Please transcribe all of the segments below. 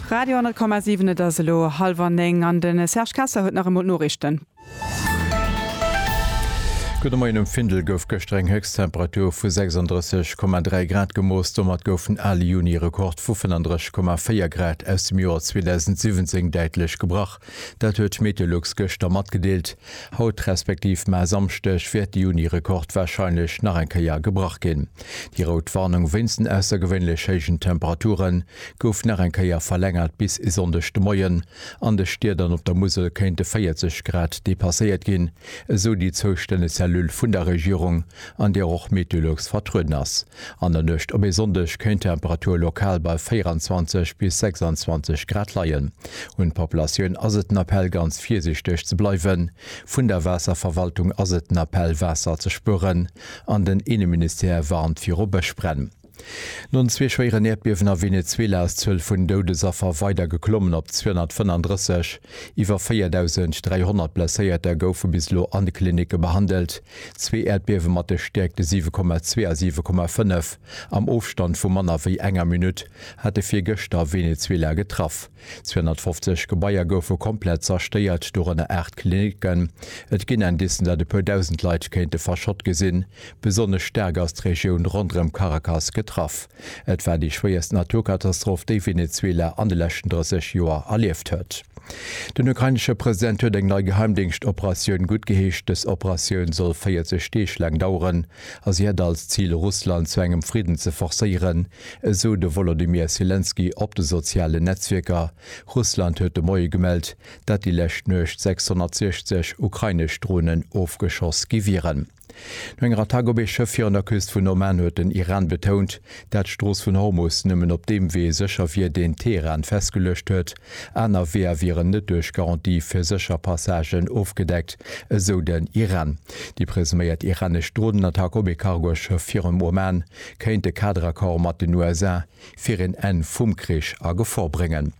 Radio 10,7 Et ass elo hallwer néng an de Serge Kessler huet nach emol d'Noriichten. Gudde Moien, Um Findel gouf gëschter eng Héchsttemperatur vu 36,3 Grad gemooss. Domat gouf en ale Juni-Rekord vu 35,4 Grad aus dem Joer 2017 däitlech gebrach. Dat huet d'Meteolux gëschter matgedeelt. Haut respektiv maer Samschdeg wäert de Juni-Rekord warscheinlech nach eng Kéier gebrach ginn. Déi rout Warnung wéinst den aussergewéinlech héijen Temperature gouf nach eng Kéier verlängert bis e Sonndeg de Moien. An de Stied an op der Musel kéinte 40 Grad depasséiert ginn, esou déi zoustänneg Cellule vun der Regierung, an där och Meteolux vertrueden ass. An der Nuecht op e Sonndeg kéint d'Temperatur lokal bei 24 bis 26 Grad leien. Un d'Populatioun ass et den Appell ganz virsiichteg ze bleiwen. Vun der Waasserverwaltung ass et den Appell Waasser ze spueren an den Inneministère warnt viru Bëschbränn. No zwee schwéieren Äerdbiewen a Venezuela ass d'Zuel vun Doudesaffer weider geklommen op 235. Iwwer 4.300 Blesséierter goufe bis elo an de Klinicke behandelt. Zwee Äerdbiewe mat de Stäerkte 7,2 a 7,5 am Ofstand vu manner wéi enger Minutt hate virgëschter Venezuela getraff. 250 Gebaier goufe komplett zerstéiert, dorënner aacht Klinicken. Et ginn Indicen, datt e puer Dausend Leit kéinte verschott gesinn. Besonnesch staark ass d'Regioun ronderëm Caracas getraff. Et war déi schwéierst Naturkatastroph, déi Venezuela an de leschten 30 Joer erlieft huet. Den ukrainesche President huet eng nei Geheimdéngschtoperatioun guttgeheescht. Dës Operatioun soll 40 Deeg laang daueren a si hätt als Zil, Russland zu engem Fridden ze forcéieren, esou de Wolodymyr Selenskyj op de sozialen Netzwierker. Russland huet de Moie gemellt, dat déi lescht Nuecht 660 ukrainesch Dronen ofgeschoss gi wieren. No enger Attack op ee Schëff virun der Küst vun Oman huet den Iran betount, dat d'Strooss vun Hormus nëmmen op deem Wee sécher wier, deen Teheran festgeluecht huet. Aner Weeër wieren net duerch Garantie fir sécher Passagen ofgedeckt, esou den Iran. Déi presuméiert iranesch Dronenattack op ee Cargoschëff virum Oman kéint e Kaderaccord mat den USA fir een Enn vum Krich a Gefor bréngen.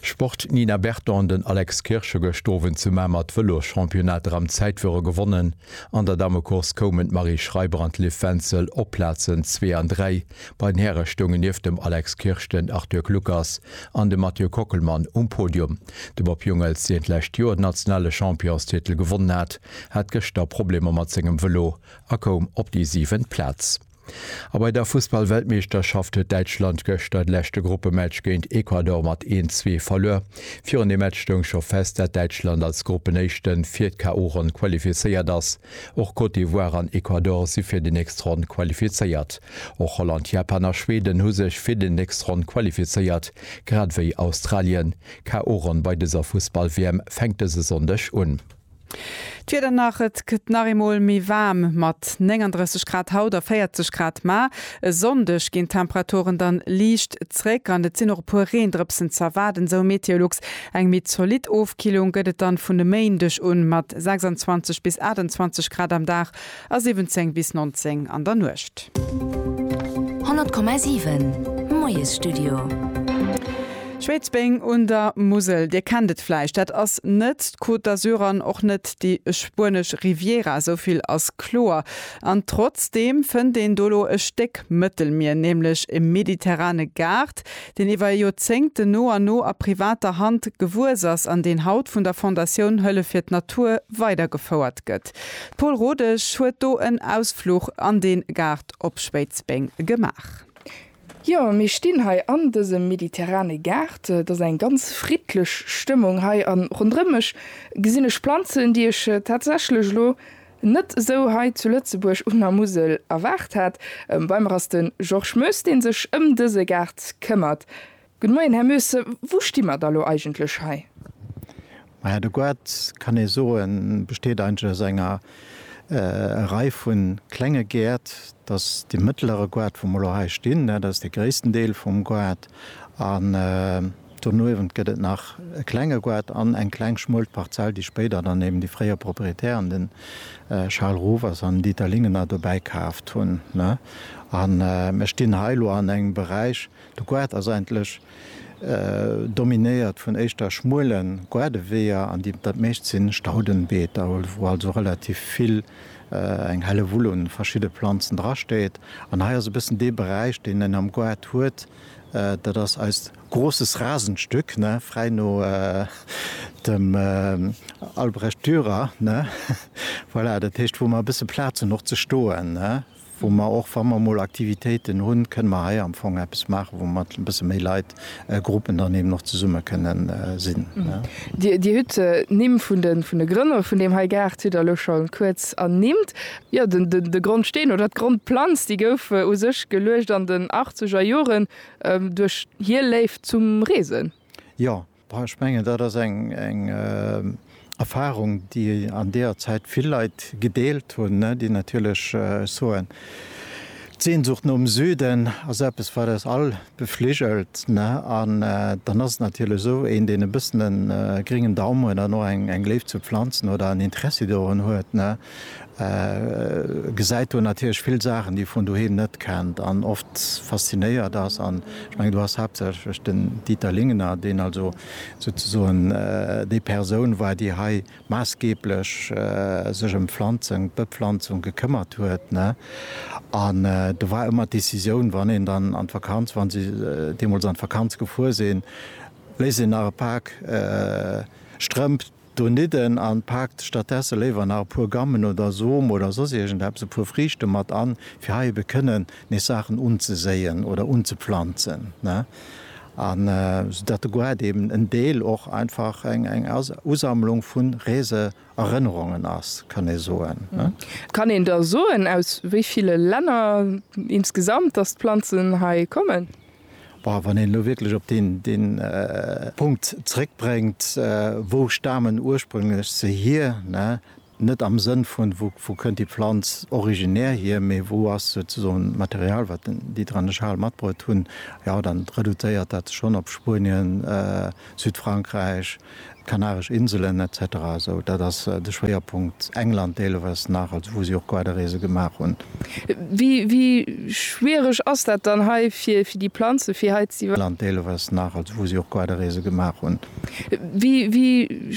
Sport, D'Nina Berton an den Alex Kirsch hu gëscht Owend zu Mamer d'Vëlosschampionnat Ram Zäitfuere gewonnen. An der Damecourse koumen d'Marie Schreiber an d'Liv Wenzel op d'Plazen zwee an dräi. Bei den Häre stoungen nieft dem Alex Kirsch den Arthur Kluckers an de Mathieu Kockelmann um Podium. De Bob Jungels, deen d'lescht Joer den nationale Championstitel gewonnen hat, hat gëschter Problemer mat sengem Vëlo a koum op déi siwent Plaz. A bei der Fussballweltmeeschterschaft huet Däitschland gëschter de leschte Gruppematch géint Ecuador mat een, zwee verluer. Virun dem Match stoung scho fest, dat Däitschland als Gruppenéischte fir d'KO-Ronn qualifizéiert ass. Och Côte d'Ivoire an Ecuador si fir déi nächst Ronn qualifizéiert. Och Holland, Japan a Schweden hu sech fir déi nächst Ronn qualifizéiert, grad ewéi Australien. D'KO-Ronn bei dëser Fussball-WM fänkt dëse Sonndeg un. D'Wieder nach, Et gëtt nach eemol méi waarm mat 39 Grad haut a 40 Grad, ma e Sonndeg ginn d'Temperaturen dann liicht zréck an et sinn och e puer Reendrëpsen ze erwaarden, esou Meteolux. Eng méi zolidd Ofkillung gëtt et dann vun e Méindeg un mat 26 bis 28 Grad am Dag. A 17 bis 19 an der Nuecht. 100,7 Moiesstudio. Schwéidsbeng un der Musel, Dir kennt et vläicht, dat ass net d'Côte d'Azur an och net déi spuenesch Riviera, esou vill ass kloer. An trotzdeem fënnt een do elo e Stéck Mëttelmier, nämlech e mediterrane Gaart, deen iwwer Joerzéngten no an no a privater Hand gewuess ass an deen haut vun der Fondatioun Hëllef fir d'Natur weidergefouert gëtt. D'Paul Rodesch huet do en Ausfluch an den Gaart op Schwéidsbeng gemaach. Jo, mir stinn hei an dësem mediterrane Gaart. Et ass eng ganz friddlech Stëmmung hei an ronderëm mech gesinn ech Planzen, déi ech tatsächlech elo net esou hei zu Lëtzebuerg un der Musel erwaart hat. Bei mer ass de Georges Moes, dee sech ëm dëse Gaart këmmert. Gud Moien, Här Moesse, wou sti mer da lo eigentlech hei? Maja, de Guard, kann ee soen, besteet eigentlech aus enger Rei vu klenge Gäert. Dass dee mëttlere Guard, wou mer lo hei stinn, dat ass dee gréissten Deel vum Guard. An donuewent gëtt et nach e klenge Guard an eng kleng schmuel Parzell, déi spéider dann eben déi fréier Proprietären, de Charles Rovers an Dieter Lingener, dobäi kaaft hunn. An mer stinn hei lo an engem Beräich, De Gaart ass eigentlech dominéiert vun éischter schmuele Gaardeweeër an déi dat meescht si Staudenbeeter, wou also relativ vill, eng Hellewull un verschidde Planzen dra steet. An hei ass e bëssen dee Beräich, deen en am Gaart huet, dat ass eist großes Rasenstück, ne, fräi no dem Albrecht Dürer, ne, voilà, dat heescht, wou mer e bësse Plaz hunn och ze stoen, ne. wou mer och, wa mer emol Aktivitéiten hunn, kënne mer hei am Fong eppes maachen, wou mer e bësse méi Leit, Gruppen dann eben och zesumme kënne sinn. Dir hutt d'Nimm vun de Grënner vun deem hei Gaart hutt Der elo scho kuerz ernimmt. Jo, de Grondsteen oder d'Grondplanz, déi gouf u sech geluecht an den achtzeger Joren duerch hir Léift zum Reesen. Jo, Ech mengen, dat ass eng Erfahrung, déi an deeër Zäit vill Leit gedeelt hunn, déi natierlech soen, d'Sehnsucht nom Süden ass eppes, wat eis all befligelt. An dann ass et natierlech esou, een, deen e bëssen e gréngen Daum huet an och eng Léift zu Planzen oder en Interessi dorun huet, gesäit do natierlech vill Saachen, déi e vun doheem net kennt an oft faszinéiert ass. An ech mengen, do ass haaptsächlech den Dieter Lingener, deen also souzesoen déi Persoun war, déi hei maassgeeblech sech ëm d'Pflanzung, d'Bepflanzung gekëmmert huet. An do war ëmmer d'Decisioun, wann een dann an d'Vakanz, wa si deemools an d'Vakanz gefuer sinn, léisst een nach e Pak Strëmp do nidden an paakt stattdesse léiwer nach e puer Gammen oder Som oder soss iergendeppes, e puer Friichten mat an, fir hei ebe kënnen nees Saachen unzeséien oder unzepflanzen, ne, an soudatt de Goart eben en Deel och einfach eng Usammlung vun Reese Erënnerungen ass, kann ee soen, ne. Kann een da soen, aus wéi ville Länner insgesamt, datt d'Planzen hei kommen? Bon, wann een elo wierklech op deen, deen Punkt zréckbréngt, wou stamen ursprünglech se hier, ne? Net am Sënn vun, wou, wou kënnt déi Pflanz originär hier, mee wou ass souzesoen d'Material, wat den, déi dran de Charles matbruet hunn, jo, dann reduzéiert dat sech schonn op Spuenien, Südfrankräich, D'Kanaresch Inselen etc. Esou dat ass de Schwéierpunkt. England deelewes nach, also wou si och Quaderreese gemaach hunn. Wéi schwiereg ass dat dann hei fir déi Planze fir hei ze. England deelewes nach, also wou si och Quaderreese gemaach hunn. Wéi